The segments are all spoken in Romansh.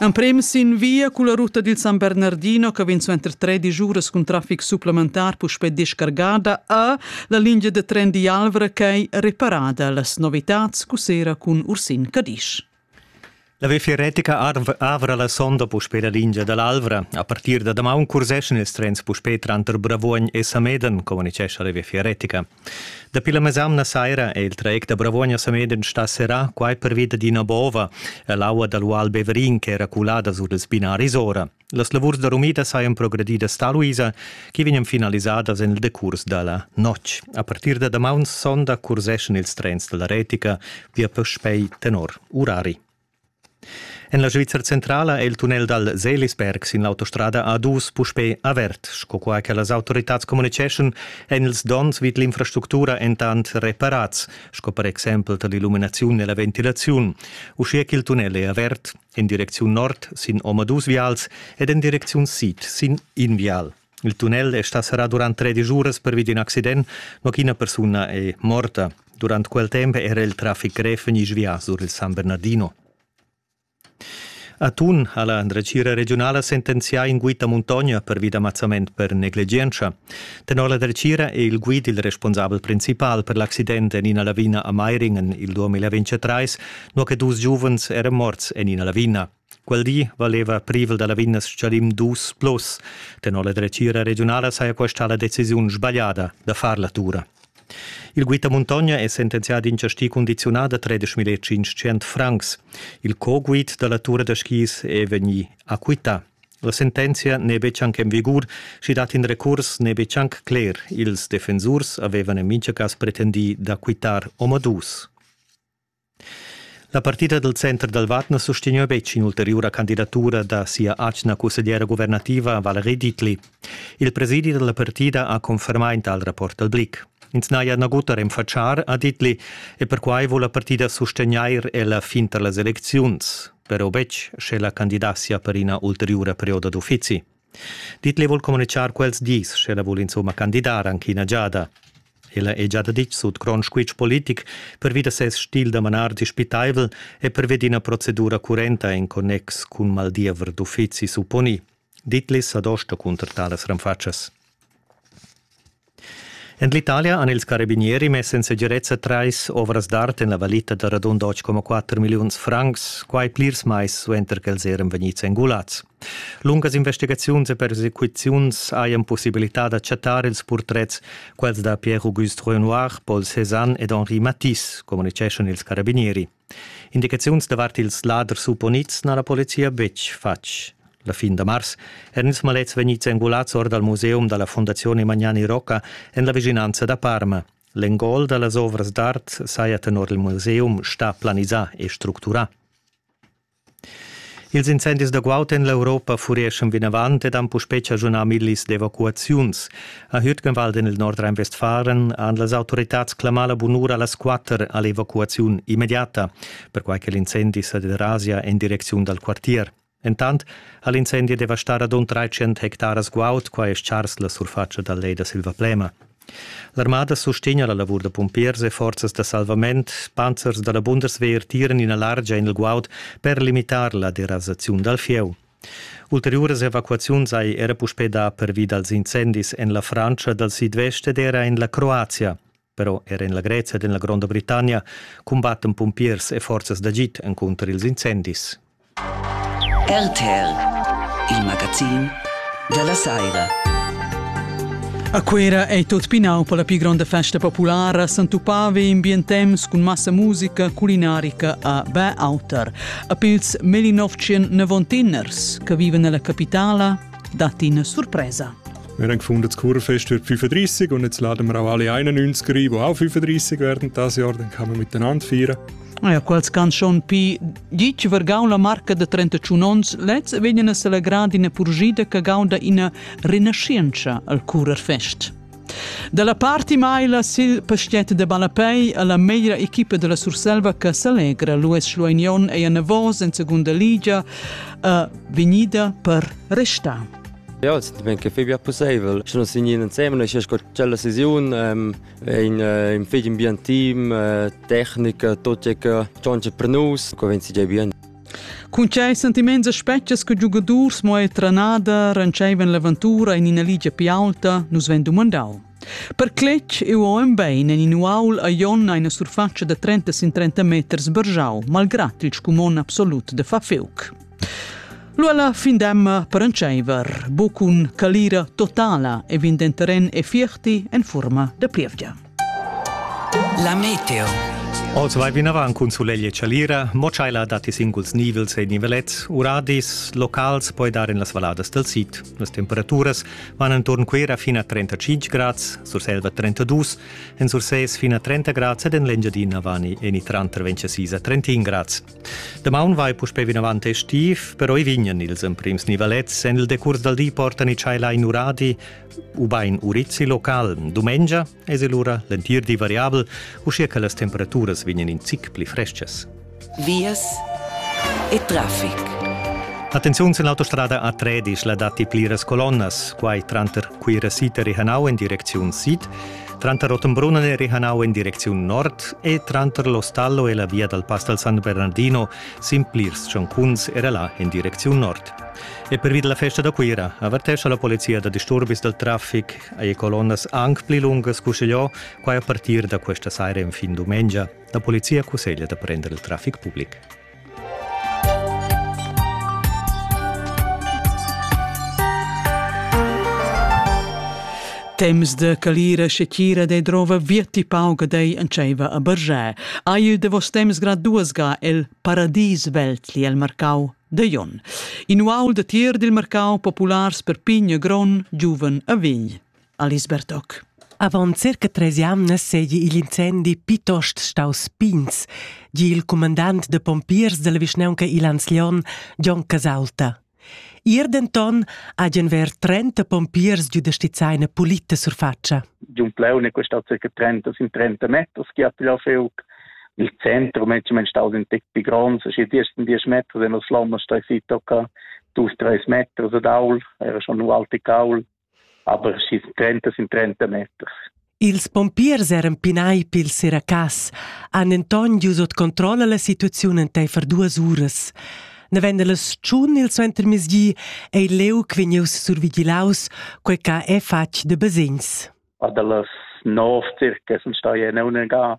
Emprem sin via culla ruta dil San Bernardino che vegn suenter tredic uras cun traffic supplementar puspei descargada a la linea de tren di Alvra ch'ei reparada las novitads cussera cun Ursin Cadisch. La VFR Retica avra la sonda puspei la lingia dall'Alvra. A partir da damaun curseschan ils trens puspei tranter Bravuogn e Sameden, communicescha la VFR Retica. Dapi la mesamna saira è il trec da Bravuogna Sameden stà serrà, quai pervi dad ina bova ell'aua dal Ual Beverin ch'era culada sur ils binaris ora. Las lavurs da rumida sajan progredidas tar Luisa, che vegnan finalisadas en il decurs da la notg. A partir da damaun sonda curseschan ils trens dalla Retica via puspei tenor urari. En la Svizra centrala è il tunnel dal Seelisberg sin l'autostrada A2 puspè avert. Sco qua che las autoritads communiceschan, èn ils donns vid l'infrastructura entant reparads, sco per exempel tar l'illuminaziun e la ventilaziun. Uschia ch'il tunnel è avert en direcziun nord sin omadus vials ed en direcziun sid sin in vial. Il tunnel è stà serrà durant tredisch uras pervi d'in accident, ma ch'ina persuna è morta. Durant quel temp era il traffic grev vegnì svià sur il San Bernardino. A Thun ha la dretgira regiunala sentenzià in guid da muntogna pervi d'ammazzament per negligientscha. Tenor la dretgira è il guid il responsabel principal per l'accident en ina lavina a Meiringen il 2023, nua che dus giuvens eran morts en ina lavina. Quel di valeva privel da Lavinia Schadim dus plus. Tenor la dretgira regiunala saja questa la decisiun sbagliada da far la tura. Il guida Muntogna è sentenzià d'in chasti condiziunà da 13.500 francs. Il co-guid da la tura da skis è vegnì acquità. La sentenzia n'è betg anc en vigur, sch'i dat in recurs n'è betg anc cler. Ils defensurs avevan en mintga cas pretendì d'acquittar omadus. La partida dal center dal Vad na sustegna betg in'ulteriura candidatura da sia atgna cussegliera guvernativa Valerie Ditli. Il presidi da la partida ha confermà in tal rapport al Blick. Ins n'haja nagut a renfatschar a Ditli e perquai vul la partida sustegnair ella fin tar las elecziuns, però betg sche la candidatia per ina ulteriura perioda d'uffizi. Dit le vul comunichar quels dis, sch'ella vul insomma candidar anche ina giada. Ella è già ditg sut grond squitsch politic pervi da ses stil da manar dispitaivel e pervi d'ina procedura currenta in connex cun maldiever d'uffizi supponì. Ditlis adosta cunter talas renfatschas. En l'Italia han ils carabinieri mess en segirezza trais ovras d'art en la valita da radund 8,4 milliuns francs, quai plirs mais suenter ch'els eran vegnids engulads. Lungas investigaziuns e persecuziuns hajan pussibilità da chattar ils purtrets, quels da Pierre-Auguste Renoir, Paul Cézanne ed Henri Matisse, communiceschan ils carabinieri. Indicaziuns davart ils laders supponids n'ha la polizia betg fatg. La fin da mars eran ils malets vegnids engulads or dal museum da la Fondazione Magnani Rocca en la vischinanza da Parma. L'engol da las ovras d'art saja tenor il museum stà planisà e structurà. Ils incendis da guaud en l'Europa fureschan vinavant ed han puspè chaschunà millis d'evacuaziuns. A Hütgenwald en il Nordrhein-Westfalen han las autoritads clamà la bunura a las quatter a l'evacuaziun immediata, perquai che l'incendi sa derasia en direcziun dal quartier. Entant ha l'incendi devastà radund 300 hectaras guaud, qua è stgars la surfatscha dal lej da Silvaplema. L'armada sustegna la lavur da pumpiers e forzas da salvament. Panzers da la Bundeswehr tiran ina largia en il guaud per limitar la derasaziun dal fieu. Ulteriuras evacuaziuns hai era puspè dà pervi dals incendis en la Frantscha dal sidvest ed era en la Croazia. Però era en la Grezia ed en la Gronda Britannia cumbattan pumpiers e forzas d'agid encunter ils incendis. RTR, il magazin dalla saira. A Cuera ei tot pinau per la più gronda festa populara Santupave in Bientem cun massa musica culinarica a Bäauter. A pils 1990ers che viven nella capitala datti una sorpresa. Wir haben gefunden, das Kurfest wird 35 und jetzt laden wir auch alle 91er ein, die auch 35 werden dieses Jahr, dann kann man miteinander feiern. Ja, quals can schon pi ditg vergau la marca da 31 ons, lez vegnan a selegrar d'ina purgida che gaunda ina rinascienza al curer fest. Dalla parti maila sil pastiet de Balapei alla meglra equipa della Surselva che s'alegra Luis Schluignon ei anavos en segunda liga uh, vegnida per restar. Ja, es ben che fai bia possibel. Schon signi in insieme, es sco cella sesiun, ähm, ein ün fich ambientim, tecnica, tut che tschontscha per nus, co vegn si già bene. Cun quei sentiments e spetgas che giugadurs mo e trenada rencevan l'aventura in ina ligia più alta, nus ven dumandau. Per cletg eu ho en bein en in uaul a Jonna ina surfaccia da 30 sin 30 meters bergiau, malgrat il scumon absolut de Fafiuc. Lu alla fin d'emma prendscheiver bucun calira totala e vin den terren e fierti en forma de plievgia. La meteo. Oz vai vinavant cun sulegl e chalira, mo tscheila datti singuls nivels e nivelets, uradis, locals poi dar en las valladas del sid. Las temperaturas van entorn Cuera fin a 35 grads, Surselva 32, en Sursès fin a 30 grads ed en l'Engiadina vani en i tranter 26 a 31 grads. Damaun vai puspè vinavant estiv, però i vignan ils emprims nivalets en il decurs dal di portan i tschailar in uradi ubain urizi local. Dumengia es il ura l'entir di variabel, uschia che las temperaturas vignan in zic pli freschas. Vias e traffic. Attenziun sin l'autostrada A13 la datti pliras colonnas, quai tranter Cuira Siter e Hanau en direcziun sid. Tranter Ottenbrunn e Rihanau en direcziun nord e tranter l'Ostallo e la via dal Pass dal San Bernardino sin plirs tschancuns era là en direcziun nord. E pervi della festa da Cuira avertescha la polizia da disturbis dal traffic ei colonnas anc pli lungas cuchegliò quai a partir da questa saira en fin dumengia. La polizia cusseglia da prender il traffic public. Temps de calira se chira de drova virti pauga dei enceiva a Bergé. Aiu de vos temps graduasga el paradis veltli el marcau de Jon. In uaul de tier dil marcau populars per pign e gron giuven a Vign. Alice Bertoc. Avant circa tres jamnas seigi igl incendi pitost staus pigns, di il cumandant de pompiers della vischnaunca Ilans Lion, Gion Casalta. Ier denton hagen ver 30 pompiers giu da stizzai eine pulita surfaccia. Giun Pleun è questa circa 30 sin 30 meters che hat ja feu il centro mensch men staus in tick pi grons e die ersten 10 Meter den Slammer stoi si tocca 2 3 Meter so daul era schon nu alte caul aber schis 30 sind 30 meters. Ils pompiers eran pinai pil seracas, han enton gius ot controll alla situaziun enteifer duas uras. Neven las tschun il suentermezgi ei leu vegnius survigilaus, quei ca è fatg de basegns. A dallas 9 circa sun stai en unega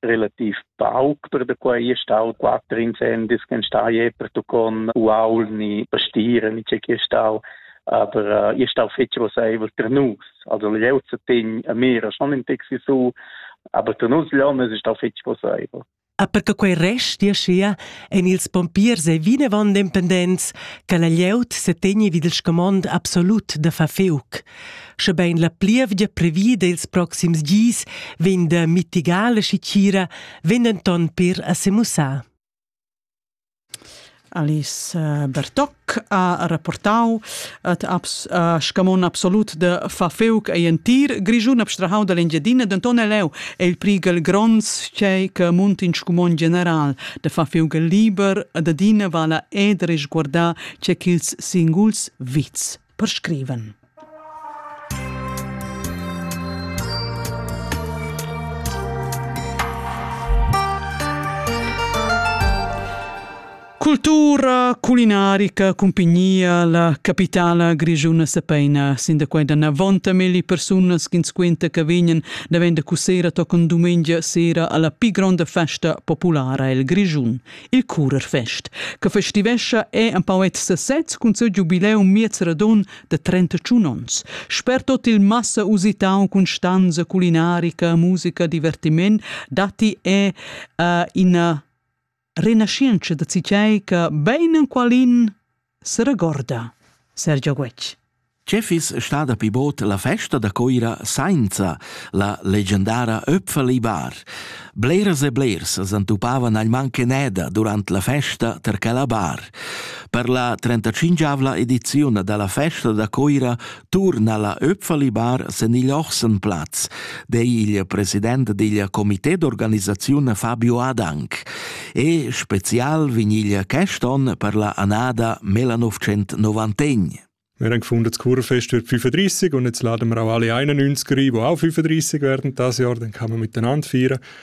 relativ pauc per da quei è stau quatter incendis che sta je per tu con uaul ni pastiere ni c'è che stau aber uh, è stau fetg roseivel per nus also leu zu tin a mira schon in taxi su aber per nus leu es stau fetg roseivel A per che quei rest dia schia en ils pompiers e vinevon dependents che la glieud se tegni vid il scomond absolut da far feuc. Schebein la plievgia previda ils proxims gis vegn da mitigar la schitgira, vegn denton per a semussar. Alice eh, Bertoc ha rapportau et abs, uh, scamon absolut de Fafeuc ei entir Grischun abstrahau dall'Engiadina, denton è leu è il prigel gronds chei che munt in scumon general de Fafeuc liber, ad adina vala ed risguarda ce ch'ils singuls vits perscrivan. Cultura culinarica cumpignia la capitala grischuna sapeina sin da quei da navonta melli persunas ch'ins quenta che vegnan davent da cussera tochen dumengia sera alla pi gronda festa populara el Grischun. il Curerfest, che festivescha è en poet sesez cun seu giubileum miez radun de 31 ons. Sper tot il massa usitau cun stanza culinarica, musica, divertiment, datti è uh, ina renascenza da citei che bein en qualin seregorda Sergio Guetg. Che fiss stada pi bod la festa da Coira sainza la legendara Öpfelibar? Bleras e blers s'antupavan agl mancaneda durant la festa tar quella bar. Per la 35 ediziun dalla festa da Coira Turna la Öpfalibar sen igl Ochsenplatz, dei il president digl comité d'organisaziun Fabio Adank. E spezial vinigl quest on per la annada 1991. Wir haben gefunden, das Kurfest wird 35 und jetzt laden wir auch alle 91er ein, die auch 35 werden dieses Jahr, dann kann man miteinander feiern.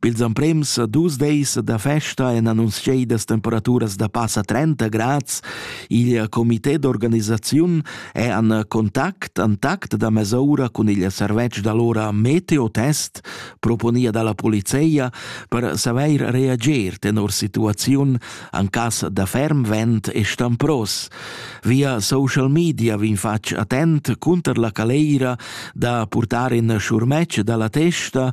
Pils emprems dus deis da festa ein annunziedas temperaturas da passa 30 grads. Il comité d'organisaziun è an contact, an tact da mesaura cun il servetsch d'allora Meteotest, proponia dalla polizia, per saver reager tenor situaziun an cas da ferm vent e stampros. Via social media vin fatg attent cunter la caleira da purtar in schurmetg dalla testa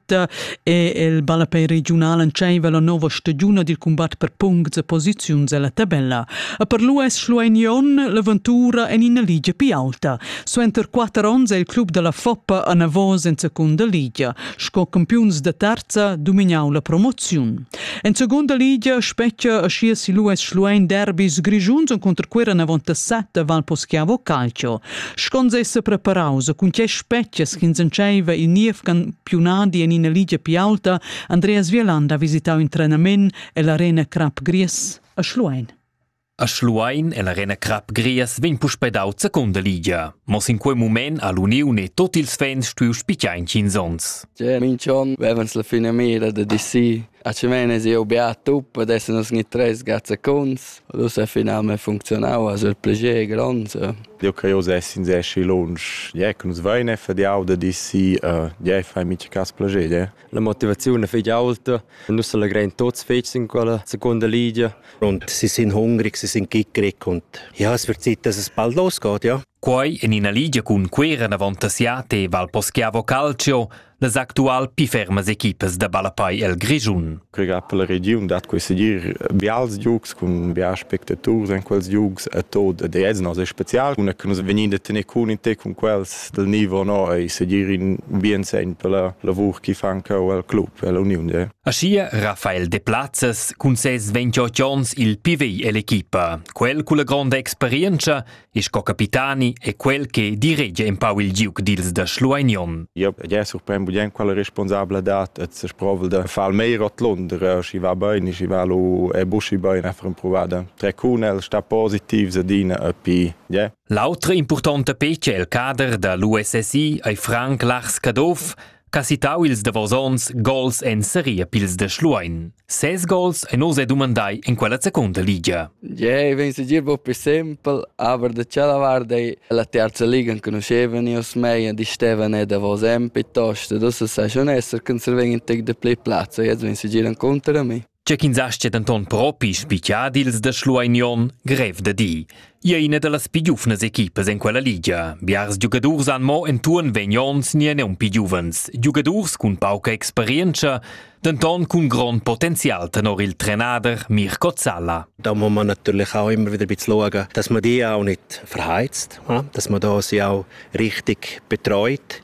è il ballapei regiunal entscheiva la nova stagiuna dil combat per puncts e posiziuns ella tabella. E per l'US Schlueignon l'aventura en ina ligia più alta. Suenter quatter onns è il club della Foppa a Navos en seconda ligia. Sco campiuns da terza domignau la promoziun. En seconda ligia specchia a schias il US Schluein derbis grigiuns contro Quera Navonta 7 Val Poschiavo Calcio. Schons ei sepreparaus cun tgei spetgas ch'ins entscheiva il niev campiunadi en ina ligia pli aulta, Andreas Wieland ha visitau in trenament ell'Arena Crap Gries a Schluein. A Schluein e l'Arena Crap Gries vegn puspei daut secunda ligia. Mo sin quei mument ha l'uniun e tot ils fans stuiu spitgar in tschins onns. Cioè, minch'on vevans la fina mira da di sì. A Cemenes eu beat up, adesso nos gni tres gat seconds. Ad ussa finalmein funcziunau ha siu plascher gronds. Jeu creiu sessi insaschi lunsch. Ja, che nus vein e fadiau da di si, ja, fai mica cass plascher, ja. La motivaziun fetg aulta. Nus allegrein tots fetg in quella seconda ligia. Und sie sind hungrig, sie sind kickrig und ja, es wird Zeit, dass es bald losgeht, ja. Quai en ina ligia cun Cuera avant a Siate val Poschiavo Calcio las actual pli fermas equipas da ballapei el Grischun. Quei ga per la regiun dat quei segir bials giugs cun bials spectaturs en quels giugs e tot de ez nos è special cun che nus vegnir da tener cun in te cun quels del nivo no e segir in bien segn per la lavur che fan cheu el club e la uniun. Aschia Rafael de Platzes cun ses 28 onns il pivei ell'equipa. Quel cu la gronda experienza e sco capitani è quel che diregia empau il giug dils da Schlueignon. Io ja surprend bien quella responsabla dat et se provel de far meir ot Lunder si va bein si va lu e buschi bein a far provada tre cunel sta positiv se dina e pi ja L'autra importante pece el cader da l'USSI ei Frank Lars Caduff Casitau ils davos onns gols en seria pils da Schluein. Ses gols ein oz dumandai en quella secunda liga. Jei vegn segir buc pli sempel, aber da tschella vart ei la terza liga enconuschevan io mei e di stevan e davos en piuttosto, dus sai schon esser, che se vegn in tec de pli plazza, jetzt vegn segir en contra a mi. Tge ch'ins astga denton propi spicar dils da Schlueinion, grev da dir. Ia ina dallas pi giuvnas equipas en quella ligia. Biars giugadurs han mo entuorn vegn onns ni neun pi giuvens, giugadurs cun pauca experienza, denton cun grond potenzial tenor il trenader Mirko Zalla. Da haben wir natürlich auch immer wieder ein bisschen schauen, dass man die auch nicht verheizt, dass man da sie auch richtig betreut.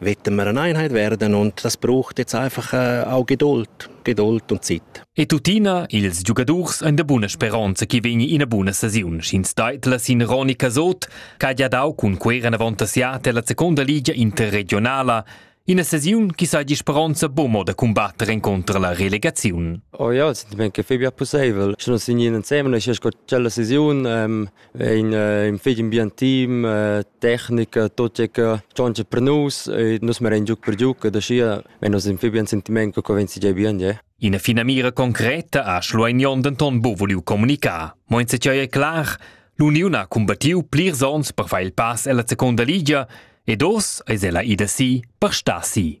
Wetten wir eine Einheit werden und das braucht jetzt einfach äh, auch Geduld, Geduld und Zeit. E tuttina ils giugadurs ein da buna speronza che vegni ina buna sesiun, sch'ins deitla sin Roni Casot, che ha dau cun quera avantassiata la seconda liga interregionala Ina sesiun chi sa di speronza bomo da combatter incontro la relegazione. Oh ja, sind mir gefäbi possibel. Schon sind in semen, ich sco cella sesiun, ähm, ein ün fich ambientim, tecnica, tut che che tschontscha per nus e nus merein giug per giug ed aschia vein nus ün fich bien sentiment co vegn si bien, je. Ina fina mira concreta ha Schlueignon denton buca voliu comunicar. Mo in secei è clar, l'uniun ha combattiu plirs onns per far il pass ella seconda ligia ed oz eis ella ida si per star si.